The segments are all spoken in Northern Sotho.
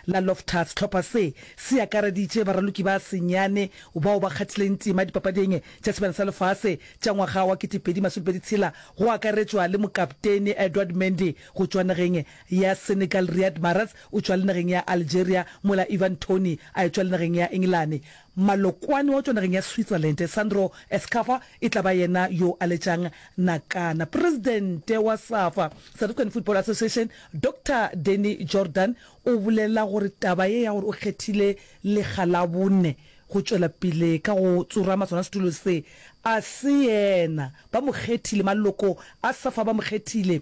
la Loftus. Tlhopha se, se akareditše baraloki ba senyane bao ba kgathileng tema Dipapading tša Sebjana sa Lefase tša ngwaga wa 2026, tshela go akaretšwa le mokaptene Edouard Mendy go tšwa nageng ya Senegal, Riyad Mahrez o tšwa le nageng ya Algeria mola Ivan Toney a etšwa le nageng ya Engelane. Mmalokwane wa tšwa nageng ya Switzerland, Sandro Escaffa, e tla ba yena yo a letšang nakana. Presidente wa Safa, South African Football Association, Doctor Danny Jordaan o bolela gore taba ye ya gore o kgethile lega la bone go tšwela pele ka go tsorama sona setulo se, a se yena. Ba mo kgethile, maloko a Safa ba mo kgethile.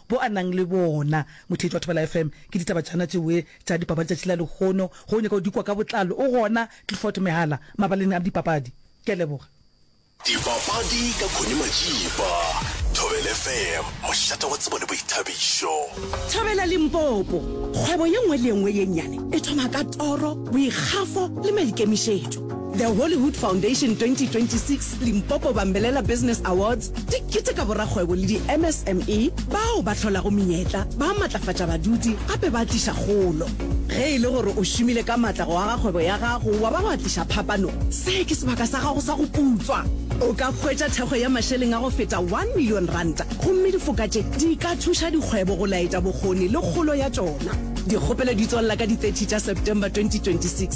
bo a nang le bona. Motheetši wa Thobela FM, ke ditaba tšana tšewe tša dipapadi tšatši la lekgono, ge o nyaka go di kwa ka botlalo o gona Clifford Mehala mabaleng a dipapadi. Ke a leboga. Dipapadi ka Connie Majiba, Thobela FM, mošate wa tsebo le boithabišo. Thobela Limpopo, kgwebo ye nngwe le ye nngwe ye nnyane e thoma ka toro, boikgafo le maikemišetšo. The Hollywood Foundation 2026 Limpopo Bambelela Business Awards di keteka borakgwebo le di-MSME bao ba hlolago menyetla, ba matlafatša badudi gape ba tliša kgolo. Ge e le gore o šomile ka matla go aga kgwebo ya gago wa ba wa tliša phapano, se ke sebaka sa gago sa go putswa. O ka hwetša thekgo ya mašeleng a go feta one million ranta gomme difoka tše di ka thuša dikgwebo go laetša bokgoni le kgolo ya tšona. Dikgopelo di tswalela ka di 30 tša September 2026.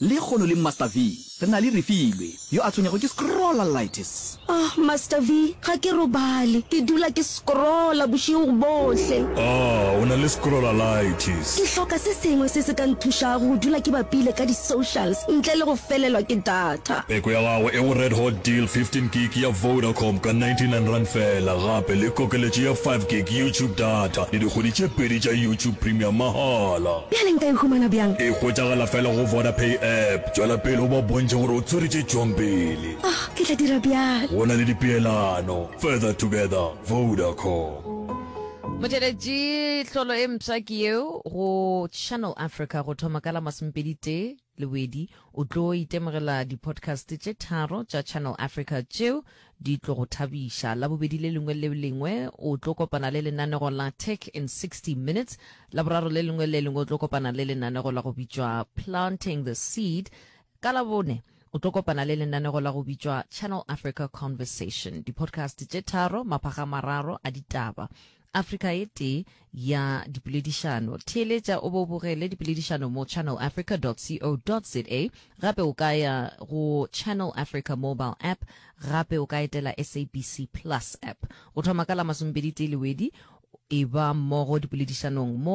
Lehono le Master V re na le Refilwe yo a tshwenyego ke scrollalitis. Ahh Master V, ga ke robale, ke dula ke scrolla bošego bohle. Ahh o na le scrollalitis. Ke hloka se sengwe se se ka nthušago go dula ke bapile ka di socials ntle le go felelwa ke data. Peko ya gago e go Red Hot Deal 15 gig ya Vodacom ka 99 rand fela gape le kokeletšo ya 5 gig YouTube data le dikgwedi tše pedi tša YouTube Premium mahala. Bjale nka e humana bjang? E hwetšagala fela go Vodapay app. Tšwela pele o ba bontšhe gore o tshwere tše tšwang pele. Oh, ke tla dira bjalo. Go na le dipeelano. Further together, Vodacom. Motšweletši, Tlholo e mpsha ke yeo go Channel Africa go thoma ka la masomepedi tee. Lewedi, o tlo itemogela di-podcast tše tharo tša Channel Africa tšeo di tlo go thabiša. Labobedi le lengwe le lengwe o tlo kopana le lenanego la Tech in 60 Minutes. Laboraro le lengwe le lengwe o tlo kopana le lenanego la go bitšwa Planting the Seed. Ka Labone o tlo kopana le lenanego la go bitšwa Channel Africa Conversation. Di-podcast tše tharo, maphaga mararo a ditaba. Afrika e tee ya dipoledišano. Theeletša o be o bogele dipoledišano mo channelafrica.co.za. Gape o ka ya go Channel Africa mobile app, gape o ka etela SABC Plus app. Go thoma ka la masomepedi-tee Lewedi, e ba mmogo dipoledišanong mo